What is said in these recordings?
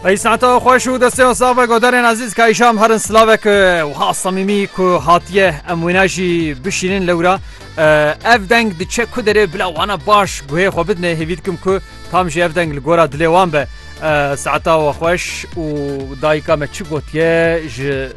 Ey saeta xweş û desteya sax be godarên ezîz ka îşam herin silavek wiha samîmî ku hatiye em wêna jî bişînin lewra ev deng diçe ku derê bila wana baş guhê xwe bidinê hêvî dikim ku tam jî ev deng li gora dilê wan be saeta we xweş û dayika me çi gotiye ji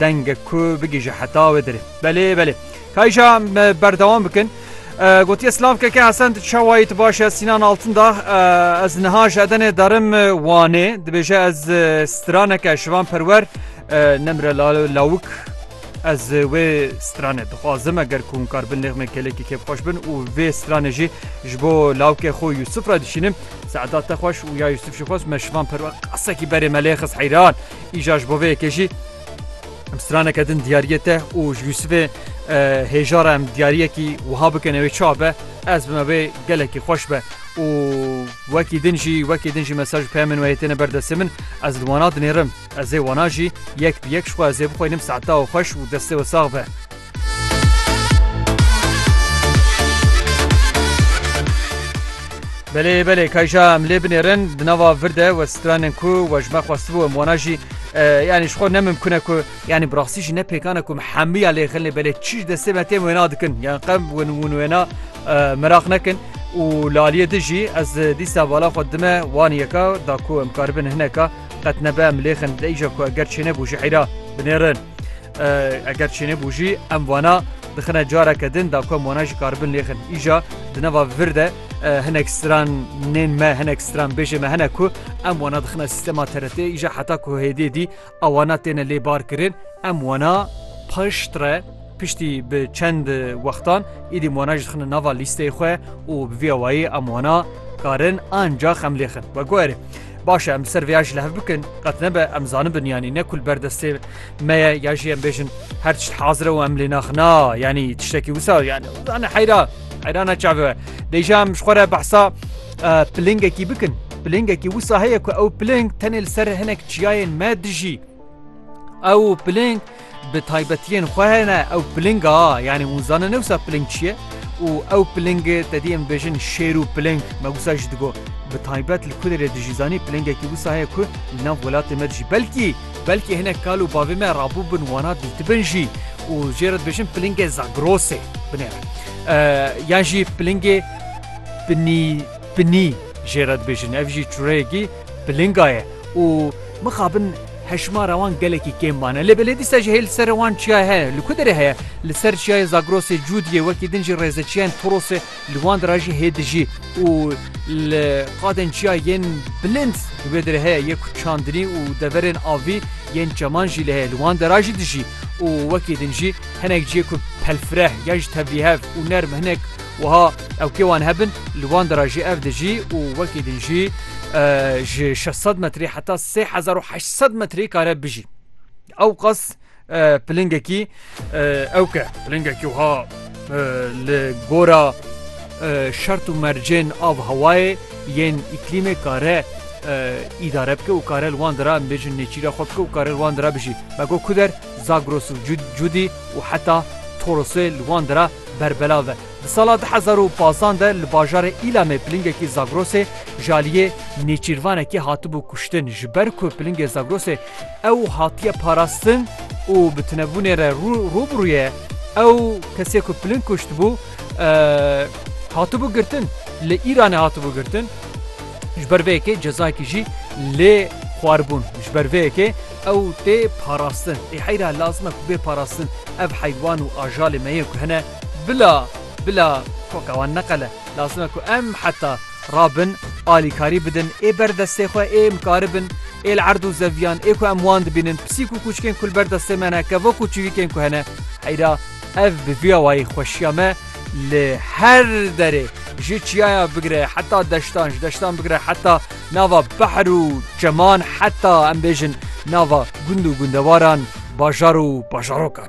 Dengek ku bigihîje heta wê derê. Belê belê. Kayîşa me berdewam bikin. Gotiye silav keke Hesen tu çawayî tu baş e Sînan Altindax ez niha ji Edenê derim Wanê dibêje ez straneke şivan perwer nemre lawik ez wê stranê dixwazim eger ku hûn kar bin nêxmê kêlekî kêf xweş bin û vê stranê jî ji bo lawkê xwe Yusuf re dişînim seeda te xweş û ya Yusuf jî xweş me şivan perwer qasekî berê me lê xist heyran Îja ji bo vê yekê jî em straneke din diyariyê te û ji Yûsifê hêja re em diyariyekî wiha bikin ew ê çawa be ez bime wê gelekî xweş be û wekî din jî wekî din jî mesaj peye min wê têne berdestê min ez li wana dinêrim ez ê wana jî yek bi yek ji xwe ez ê bixwînim seta û xweş û destê we sax be. Belê belê kayja em lê binêrin di nava vir de we stranên ku we ji me xwestibû em wana jî yanî ji xwe ne mimkune ku yanî bi rastî jî ne pêkane ku hemiya lê xilê belê çî ji destê me têm wêna dikin yan qem win win wêna meraq nekin û laliyê di jî ez dîsa bala xwe dime wan yeka da ku em karibin hineka qet nebe em lêxin dêja ku eger çêne bû ji heyra binêrin. Eger çêne bû jî em wana dixine careke din da ku em wana ji karibin lêxin. Îja di nava vir de hinek stran nên me hinek stran bêjê me hene ku em wana dixine sîstema TRT'ê îja heta ku hêdê dî ewana têne lê bar kirin em wana pişt re piştî bi çend wextan îdî wana ji dixine nava lîsteyê xwe û bi vê awayê em wana karin ancax em lêxin we guherê. Baş e em ser vê ya ji li hev bikin qet nebe em zanibin yanî ne kul berdestê me ye ya jî em bêjin her tişt hazir e û em lê naxina yanî tiştekî wisa yani zane heyra heyrana çavi we dêja em ji xwe re behsa e, pilingekî bikin pilingekî wisa heye ku ew piling tenê li ser hinek çiyayên me dijî Ew piling bi taybetiyên xwe hene ew pilinga yanî hûn zanin newsa piling çi ye û ew pilingê te dî em bêjin şêr û piling me wisa jî digo bi taybet li ku derê dijî zanî pilingekî wisa heye ku li nav welatê me dijî belkî belkî hinek kal û bavê me rabû bin wana dîtibin jî û jê re dibêjin pilingê zagrosê binê re yan jî pilingê pinî pinî jê re dibêjin ev jî çûreyekî pilinga ye û mixabin hejmara wan gelekî kêm mane. Lê belê dîsa jî hê li ser wan çiyayê heye. Li ku derê heye? Li ser çiyayê Zagrosê Cûdiyê wekî din jî rêzeçiyayên Torosê li wan de re jî hê dijî û li qadên çiya yên bilind li wê derê heye yê ku çandinî û deverên avî yên çeman jî lê heye li wan de re jî dijî û wekî din jî hinek ciyê ku pelfireh yan jî tevlîhev û nerm hinek wiha Ew kê wan hebin li wan de re jî ev dijî û wekî din jî ji şeş sed metrî heta sê hezar û heşt sed metrî kare bijî. Ew qas pilingekî ew ke pilingekî wiha li gora şert û mercên av hewayê yên îklîmê kare îdare bike û kare li wan de re em bêjin nêçîra xwe bike û kare li wan de re bijî. Me got ku der Zagros û Cudî û heta Torosê li wan de re berbelav e. Di sala du hezar û pazdeh de li bajarê Îlamê pilingekî Zagrosê ji aliyê nêçîrvanekî hatibû kuştin. Ji ber ku pilingê Zagrosê ew hatiye parastin û bi tunebûnê re rû bi rû ye, ew kesê ku piling kuştibû hatibû girtin, li Îranê hatibû girtin. Ji ber vê yekê cezayekî jî lê xwaribûn. Ji ber vê yekê ew tê parastin. Ê heyra lazim e ku bê parastin. Ev heywan û ajalê me ye ku hene. Bila bila koka wan neqele. Lazim e ku em heta rabin alîkarî bidin ê ber destê xwe ê mikaribin ê li erd û zeviyan ê ku em wan dibînin pisîk û kûçikên ku li ber destê me ne kevok û çivîkên ku hene heyra ev bi vî awayî xweşiya me li her derê ji çiyaya bigire heta deştan ji deştan bigire heta nava behr û çeman heta em bêjin nava gund û gundewaran bajar û bajarokan.